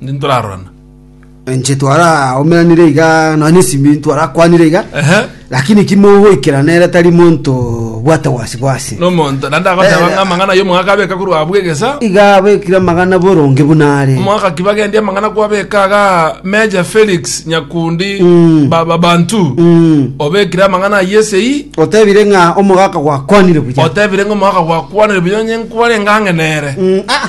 Ninde ntorarorana. Enche twaraomeranire iga nonya nesimi twarakwanire iga Ehe. lakini ki mogoikera nere tari monto bwate gwasi gwasi Nomonto. Nande agoteba Eh, ng'a amang'ana y'omogaka abeka korwa abwo egesa. iga abekire amagana boronge buna are Omogaka kibagendia amang'ana kwabeka aga Meja Felix Nyakundi Mm. Baba Bantu. Mm. Obekire amang'ana ayesei. otebire ng'a omogaka gwakwanire buya Otebire ng'a omogaka gwakwanire buya onye nkware ng'ang'e nere. Mm, ah,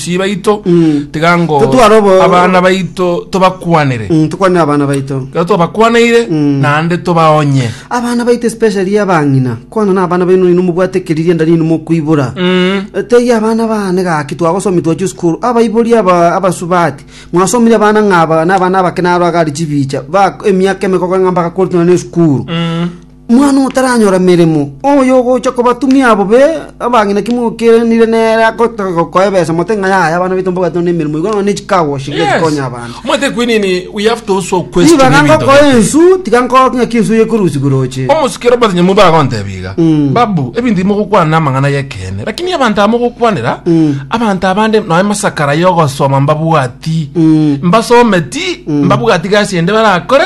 Abasii baito tiga ngo Totware obo- abana baito tobakwanere. Mm, tukwanire abana baito Ekero twabakwaneire naende tobaonye. abana baito especially abang'ina kwana na abana baino nino mobwate ekeriria nda nino mokoibora Mm. Eh, teiyo abana bane gaki twagosomi twachia esukuru abaibori aba- abasubati mwasomire abana ng'aba na abana abake naro agari chibicha ba emiaka emekoko ng'a mpaka korutana na esukuru Omwana otaranyora meremo, oyogocha kobatumia abobe abang'ina ki mokeranire nere agotoka gokoa ebesa, mote ng'a yaya abana baito mbabwate nonya nemeremo igoro nonya ne chikago goshika Yes. chikonya abana. Omanyete ekwi nini? We have to also question Nibaga ebinto ngokoa biaito. ensu, tiga nkoa ng'aki ensu eye ekorusia goroche. omosikero Robert Nyamui bagontebia iga Mm. babu ebinto imogokwana namang'ana yekeene lakini abanto aba mogokwanera Mm. abanto abande nonya masakara yogosoma mbabwati Mm. mbasometi mbabwati gasi ende barakore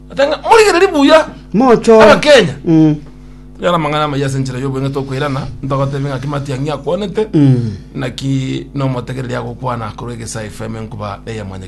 Atanga, morigererie buya Mochore. abakenya Mm. yara amang'ana amaya ase enchera y'obweng'e tokoirana ntogotebi ng'aki matiang'i akwanete naki nomotegereri agokwana korwa egesa fm enkuba eye mwanya